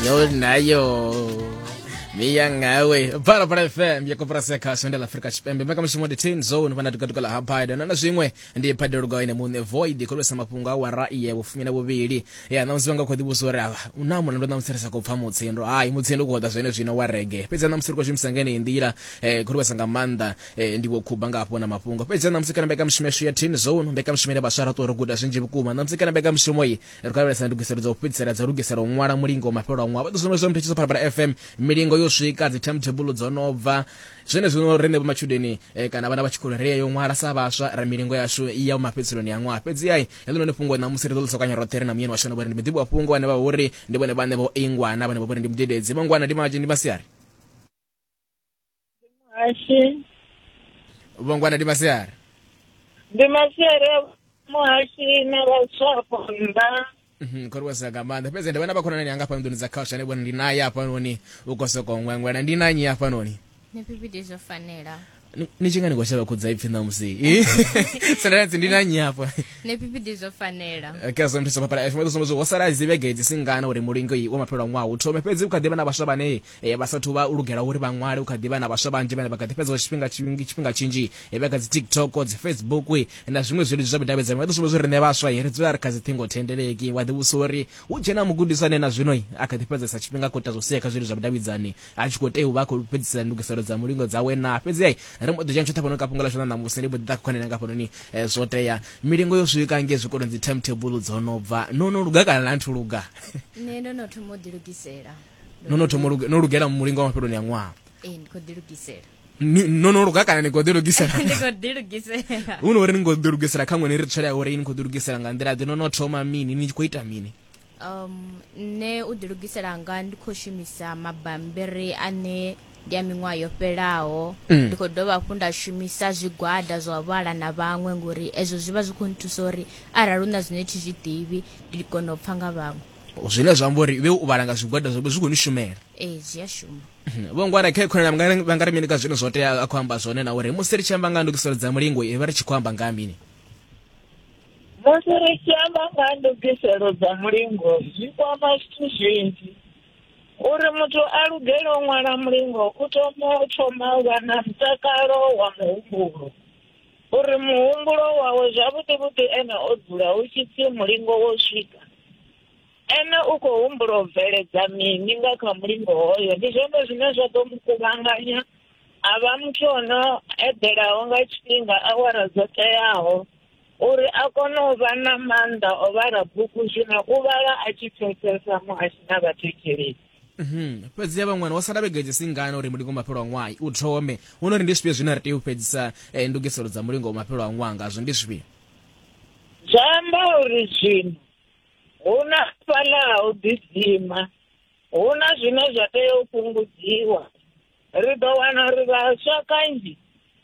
yo nayo miya ngawe bhala bhala fm ya koporasi ya khasho ndi la afrika tshipembe mbekanyamushumo ndi ten zone vhana tukatukala ha biden na zwiṅwe ndi phadelugo ine muṋe void khulisa mafhungo a wara iye vhufumi na vhuvhili ya ṋamusi vha nga khou ḓivhusa uri avha u na mulandu ṋamusi ri sa khou pfa mutsindo hayi mutsindo u khou ḓa zwene zwino wa rege fhedzi ṋamusi ri khou shumisa ngeneyi nḓila eh, khulisa nga maanḓa eh, ndi vho khuba nga hafho na mafhungo fhedzi ṋamusi kana mbekanyamushumo yashu ya ten zone mbekanyamushumo ine vhaswa ra ṱuwa ro guda zwinzhi vhukuma ṋamusi kana mbekanyamushumo iyi ri khou lavhelesa ndugiselo dza u fhedzisela dza lugisela u ṅwala mulingo wa mafhelo a ṅwaha vha ḓo sumbedzisa muthu tshiso phalaphala fm milingo yo swika dzi timetable dzo no bva zwene zwino rine vho matshudeni eh, kana vhana vha tshikolo ri yo ṅwala sa vhaswa ra milingo yashu i ya mafhedziselo ya ṅwaha fhedzi ai heḽo none fhungo na musi ri ḓo ḽisokanya roṱhe ri na muyeni washu na vhori ndi muḓivhi wa fhungo ane vha vhori ndi vhone vhane vho ingwana vhane vha vhori ndi mudededzi mangwana ndi maji ndi masiari muhashi vhongwana ndi masiari ndi masiari a muhashi na vhaswapo nnḓa Mhm, khori wesa nga maanḓa fhedzi ndi vhona vha khonani anga hafhanoni dza culture ane vhona ndi naye hafhanoni u khou sokou ṅweṅwela ndi nanyi hafhanoni ni pipiti zwo fanela Ni- ni tshi nga ni khou shavha khudza ipfhi ṋamusi sendanatsi ndi nanyi hafha ni pipiti zwo fanela kha zwo nthusa papala fm ḓo sumbedza ho sala dzi vhege dzi singana uri mulingo iyi wa mafhelo a ṅwaha u thome fhedzi u kha ḓi vha na vhaswa vhane Ee, vha sathu vha lugela uri vha ṅwale, hu kha ḓi vha na vhaswa vhanzhi vhane vha kha ḓi fhedza tshifhinga tshinzhi tshifhinga tshinzhi vhe kha dzi TikTok, dzi Facebook na zwiṅwe zwileludzi zwa vhudavhidzani. Vha ḓi sumbedza uri riṋe vhaswa ri dzula ri kha dzi ṱhingo thendeleki. Wa ḓi vhudzisa uri hu tshe na mugudiswa ane na zwino a kha ḓi fhedzesa tshifhinga a khou ita zwa u sea kha zwileludzi zwa vhudavhidzani a tshi khou tea u vha a khou fhedzisela ndugiselo dza mulingo dzawe naa? Fhedzi ri mbo ḓi dzhena tshoṱhe hafhanoni kha fhungo ḽashu ḽa ṋamusi, ndi mbo ḓi ḓa kha khonani yanga hafhanoni. Zwo tea milingo yo swika ngei zwikoloni, dzi timetable dzo no bva. No no luga kana a nthu luga? Nṋe ndo no thoma u ḓilugisela. no no thoma no lugela mulingo wa mafheloni a ṅwaha ee ndi khou ḓilugisela no no luga kana ni khou ḓilugisela ndi khou ḓilugisela hu no uri ni khou ḓilugisela kha ṅwene ri tshela ya uri ni khou ḓilugisela nga nḓila ḓe no no thoma mini ni khou ita mini um nṋe u ḓilugisela nga ndi khou shumisa mabambiri ane ndi a miṅwaha yo fhelaho mm. ndi khou dovha hafhu nda shumisa zwigwada zwa vhala na vhaṅwe ngori ezwo zwi vha zwi khou nthusa uri arali hu na zwine thi zwi ḓivhi ndi kone u pfha nga vhaṅwe zwine zwa amba uri iwe u vhala nga zwigwada zwobe zwi khou ni shumela ee zwi a shuma vho ngwana khe khona vha nga ri mini ka zwine zwo tea a khou amba zwone na uri musi ri tshi amba nga ndugiselo dza mulingo i vha ri tshi khou amba nga mini musi ri tshi amba nga ndugiselo dza mulingo zwi kwama zwithu zwinzhi uri muthu a lugele u ṅwala mulingo u thoma u thoma u vha na mutakalo wa muhumbulo uri muhumbulo wawe zwavhuḓi vhuḓi ene o dzula u tshi pfhi mulingo wo swika Ene u khou humbula u bveledza mini nga kha mulingo hoyo? Ndi zwone zwine zwa ḓo mu kuvhanganya a vha muthu o no eḓelaho nga tshifhinga awara dzo teaho uri a kone u vha na maanḓa o vhala bugu zwino u vhala a tshi pfesesa mu a tshi na vhathetshelesi. Mhm. Fhedzi ya vha ṅwana wo sala vhege dzi si ngana uri mulingo wa mafhelo a ṅwaha u thome. Hu no ri ndi zwifhio zwine ra tea u fhedzisa eh, ndugiselo dza mulingo wa mafhelo a ṅwaha ngazwo? Ndi zwifhio? Zwa amba uri zwino hu na fhaḽa ha u ḓidzima, hu na zwine zwa tea u fhungudziwa. Ri ḓo wana uri vhaswa kanzhi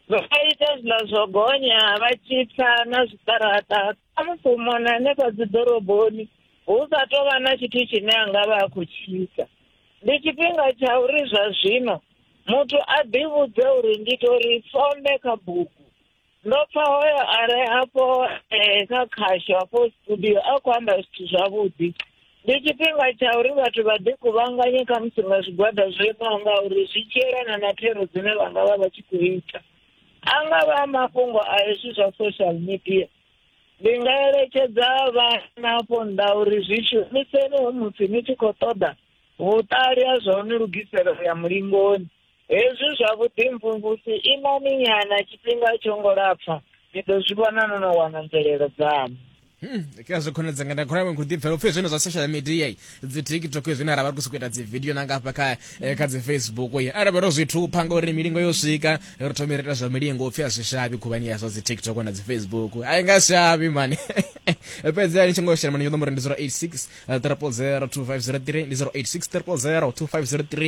vha ita zwiḽa zwo gonya vha tshi tsa na zwiṱaraṱa kha musi mona hanefha dzi ḓoroboni hu sa tou vha na tshithu tshine a nga vha a khou tshi ita. Ndi tshifhinga tsha uri zwa zwino muthu a ḓivhudze uri ndi tou ri some kha bugu. ndo pfa hoyo a re afho eh, kha khasho afho studio a khou amba zwithu zwavhuḓi ndi tshifhinga tsha uri vhathu vha ḓi kuvhanganye kha musi nga zwigwada zwo imaho nga uri zwi tshi yelana na thero dzine vha nga vha vha tshi khou ita a nga vha a mafhungo a hezwi zwa social media ndi nga eletshedza vhana afho nnḓa uri zwi shumiseni hu musi ni tshi khou ṱoḓa vhuṱali ha zwa u ni lugisela u ya mulingoni Hezwi zwa vhuḓimvumvusi imani nyana tshifhinga tsho ngo lapfa ni ḓo zwi vhona no no wana mvelelo dzaṋu Hmm, kha zwi khonedza nga ndakhona mwe khudi pfela upfe zwino zwa social media i dzi TikTok zwi na ravha ku sikuita dzi video na ngafha kha eh, kha dzi Facebook i ara bero zwi thupha nga uri milingo yo swika ri thoma ita zwa milingo upfe asi shabi khuvhani ya zwa dzi TikTok na dzi Facebook ai nga shabi mani fhedzi ali tshi ngo shela mani yo nomoro ndi 086 300 2503 ndi 086 300 2503